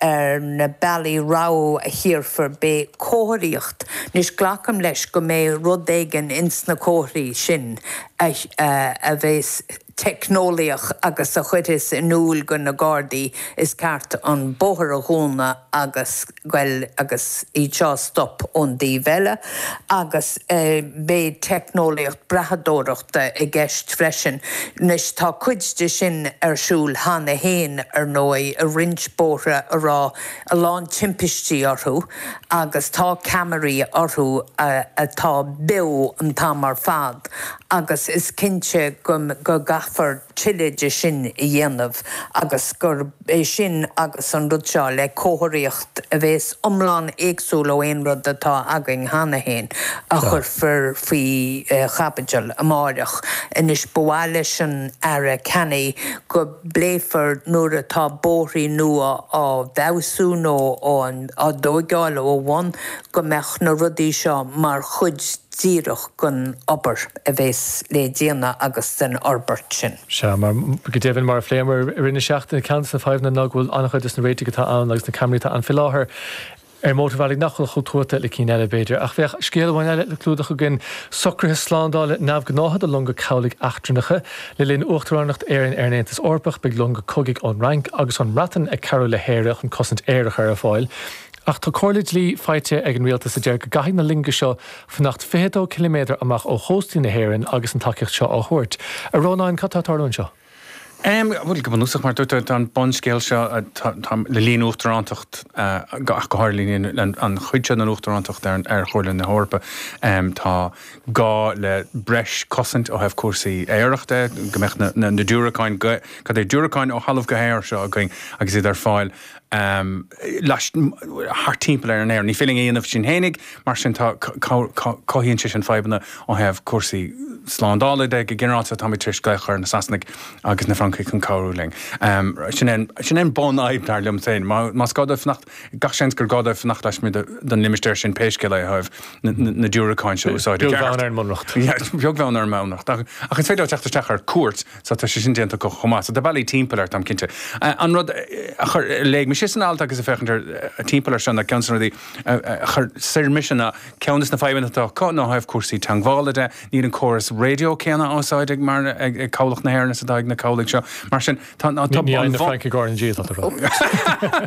ar na bealaí rabhaidh a thiúrfar beidh comharthaíocht. Anois, glacaim leis go mbeidh rud éigin ins na comharthaí sin a bheas teicneolaíoch agus a chuirfeas in iúl do na Gardaí is ceart an bóthar a dhúnadh agus, bhuel, agus iad seo a stop ón dtaobh eile. Agus beidh teicneolaíocht brathadóireach. ta i gceist freisin. Anois, tá cuid de sin ar siúl cheana fhéin, ar ndóigh, i roinnt bóithre a raibh a lán timpistí orthu, agus tá ceamaraí orthu atá beo an t-am ar fad, agus is cinnte go gcaithfear tuilleadh de sin a dhéanamh agus gurb é sin agus an rud seo le comharthaíocht a bhéas iomlán éagsúil ó aon rud atá againn cheana féin a chuirfear faoi chaibidil amáireach. Anois ba mhaith leis an Aire Canny go bpléifí nuair atá bóithrí nua á bhfeabhsú nó á dtóigeáil ó bhonn go mbeadh na rudaí seo mar chuid díreach den obair a bheas le déanamh agus den fhorbairt sin. Sea, go deimhin, mar a phléamar i rith na seachtaine, ceann de na fadhbanna ná go bhfuil an-chuid de na réitigh atá ann agus na caimairí atá ann faoi láthair ar mhótarbhealaí nach bhfuil chomh tuaithe le cinn eile, b'fhéidir. Ach beidh scéal amháin eile le clúdach againn, socruithe slándála neamhghnácha do longa cabhlaigh eachtrannacha. Le linn uachtaránacht Éireann ar an Aontas Eorpach beidh longa cogaidh ón Fhrainc agus ón mBreatain ag cabhrú le hÉire chun cosaint aeir a chur ar fáil. Ach tá comhairle dlí faighte ag an rialtas a deir go gcaithfidh na longa seo fanacht 22 ciliméadar amach ó chóstaí na hÉireann agus an tacaíocht seo á thabhairt. A Rónáin, cad tá ag tarlú anseo? Bhuel, go bunúsach, mar a dúirt tú, tá an bunscéal seo le linn uachtarántacht, ach go háirithe le linn an chuid seo den uachtarántacht ar Chomhairle na hEorpa, tá gá le breis cosaint ó thaobh cúrsaí aeir de, go mbeadh na diúracáin, cad é, diúracáin ó thalamh go haer seo againn agus iad ar fáil. laistigh, thart timpeall ar Éirinn. Ní féidir linn é a dhéanamh sinn fhéinig, mar sin tá, cothaíonn sé sin fadhbanna ó thaobh cúrsaí slándála de. Go ginearálta táimid tar éis glaoch a chur ar na Sasanaigh agus na Francaigh chun cabhrú linn. Sin é, sin é an bhunfhadhb dar liom féin. Más gá dóibh fanacht, gach seans gur gá dóibh fanacht laismuigh den limistéar sin pé scéal é ó thaobh na diúracáin seo a úsáid i gceart. Beag bheann ar an mbunreacht. Beag bheann ar an mbunreacht. Ach is féidir leo teacht isteach ar cuairt. Sea, tá sé sin déanta acu chomh maith. So tá bealaí timpeall air, táim cinnte. An rud a chuir, a léigh mise san alt agus ag féachaint ar, timpeall air seo ná ceann de na rudaí a chuir soir mise ná, ceann de na fadhbanna atá acu ná ó thaobh cúrsaí teangmhála de, níl an córas raidió céanna á úsáid ag, mar, ag cabhlach na hÉireann is atá ag na cabhlaigh seo. Mar sin, tá, tá, tá, Ní fhaigheann na Francaigh RnaG atá tú a rá.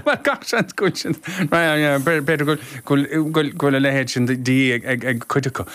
Bhuel, gach seans go bhfuil sin, b'fhéidir go bhfuil, go bhfuil, go bhfuil a leithéid sin de dhíth ag, ag, ag cuid acu.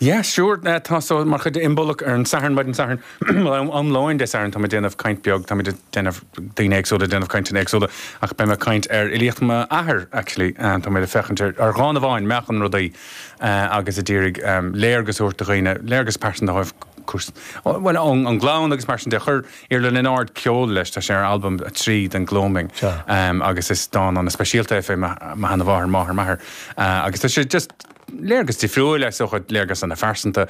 Yes, sure, tá so, mar chuid de Imbolc ar an Satharn, maidin Satharn, bhuel, am lóin Dé Satharn, táim ag déanamh caint beag, táimid ag déanamh, daoine éagsúla ag déanamh cainteanna éagsúla, ach beidh mé ag caint ar fhilíocht m'athar, actually, tá mé ag féachaint ar, ar dhán amháin, Meáchan Rudaí, agus ag iarraidh léargas a thabhairt do dhaoine, léargas pearsanta a thabhairt, cúrsaí, bhuel, ón, ón gclann agus mar sin de, chuir Iarla Ó Lionáird ceol leis, tá sé ar albam a trí den Gloaming, agus is dán ana speisialta é fé mo sheana- mháthair, máthair m'athar, agus tá sé just, Léargas difriúil, is dócha, léargas ana phearsanta.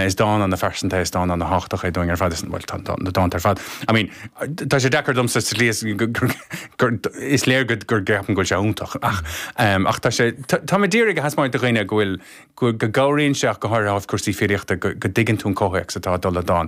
Is dán ana phearsanta é, is dán ana tháchtach é dúinn ar fad, is, bhuel, tá na dánta ar fad, I mean, tá sé deacair domsa sa slí is gur, is léir go gceapaim go bhfuil sé iontach ach, ach tá sé, táim ag iarraidh a thaispeáint do dhaoine go bhfuil, go gcabhraíonn sé ach go háirithe ó thaobh cúrsaí filíochta go dtuigeann tú an comhthéacs atá ag dul le dán.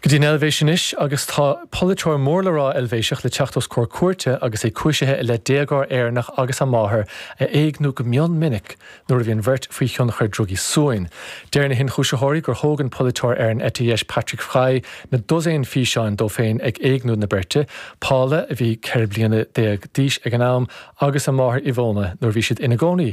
go dtí an Eilvéis anois agus tá polaiteoir mór le rá Eilvéiseach le teacht os comhair cúirte agus é cúisithe i leith déagóir Éireannach agus a máthair a éigniú go mion minic nuair a bhí an bheirt faoi thionchar drugaí suain. Deir na hionchúisitheoirí gur thóg an polaiteoir ar an eite dheis Patrick Fry na dosaein físeán de féin ag éigniú na beirte, Paula, a bhí ceithre bliana déag d'aois ag an am, agus a máthair Ivona nuair a bhí siad ina gcónaí